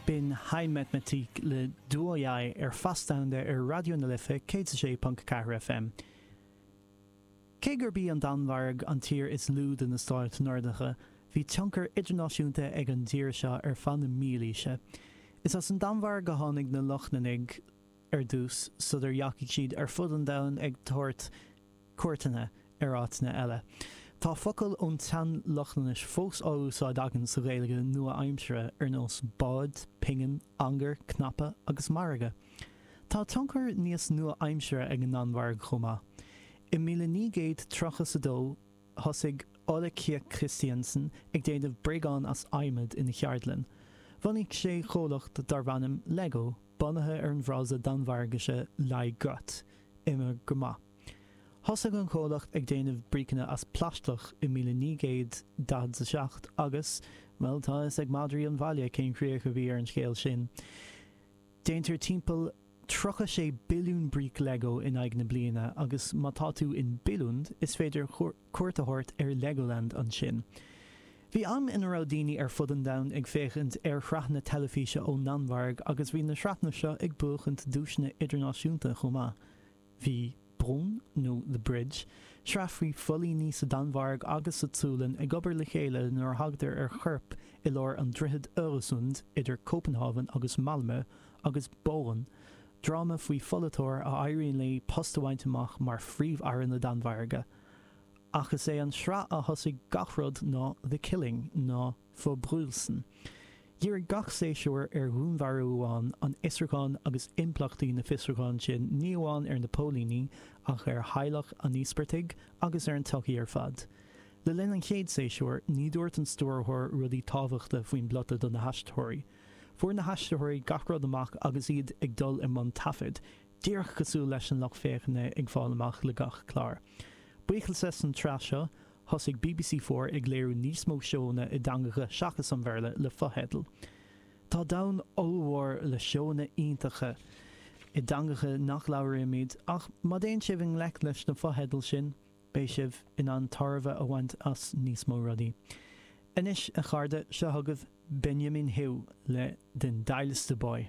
B'in Hej Matematik le Du og jeg ar Fast Domhanda ar Raidió na Life 106.4 FM. Cé gurb í an Danmhairg an tír is lú de na stáit Nordacha, bhí tionchar idirnáisiúnta ag an dtír seo ar feadh na mílaoise. Is as an Danmhairg a tháinig na Lochlannaigh, ar dtús, sular dheachaigh siad ar fud an domhain ag tabhairt cuairteanna ar áiteanna eile. Tá focail ón tSean-Lochlannais fós á úsáid againn sa Ghaeilge nua-aimseartha, ar nós bád, pingin, ancaire, cnaipe agus margadh. Tá tionchar níos nua-aimseartha ag an nDanmhairg chomh maith. I míle naoi gcéad tríocha 's a dó, thosaigh Ole Kirk Kristiansen ag déanamh bréagán as adhmad ina cheardlann. Bhunaigh sé comhlacht darb ainm Lego. Bunaithe ar an bhfrása Danmhairgise leg godt, imir go maith. Thosaigh an comhlacht ag déanamh bríceanna as plaisteach i 1947 agus, bhuel, tá a fhios ag madraí an bhaile cén chríoch a bhí ar an scéal sin. Déantar timpeall 36 billiún bríc Lego in aghaidh na bliana agus má tá tú in Billund is féidir cuairt a thabhairt ar Legoland ansin. Bhí am ina raibh daoine ar fud an domhain ag féachaint ar shraitheanna teilifíse ón nDanmhairg agus bhí na sraitheanna seo ag buachaint duaiseanna idirnáisiúnta chomh maith. Bhí Broen, nó The Bridge, sraith faoi phóilíní sa Danmhairg agus sa tSualainn ag obair le chéile nuair a thagtar ar chorp i lár an Droichid Öresund idir Cópanhávan agus Malmö agus Borgen Dráma faoi pholaiteoir a éiríonn léi post a bhaint amach mar Phríomh-Aire na Danmhairge. Ach is é an sraith a thosaigh gach rud ná The Killing nó Forbrydelsen. Dhírigh gach séasúr ar dhúnmharú amháin, an fhiosrúchán agus impleachtaí na fiosrúcháin sin ní amháin ar na póilíní ach ar theaghlach an íospartaigh agus ar an tsochaí ar fad. Le linn an chéad séasúr, ní dúirt an stiúrthóir rudaí tábhachta faoin bplota do na haisteoirí. Fuair na haistritheoirí gach rud amach agus iad ag dul i mbun taifead, díreach cosúil leis an lucht féachana ag fáil amach le gach clár. Buíochas leis an tsraith seo, thosaigh BBC Four ag léiriú níos mó seóanna i dteangacha seachas an Bhéarla le fotheidil. Tá domhan ollmhór le seóanna iontacha i dteangacha nach labhraímid ach má dtéann sibh i ngleic leis na fotheidil sin, Beidh sibh in ann tairbhe a bhaint as níos mó rudaí. Anois, a chairde, seo chugaibh Benjamin Hav le Den Dejligste Boy.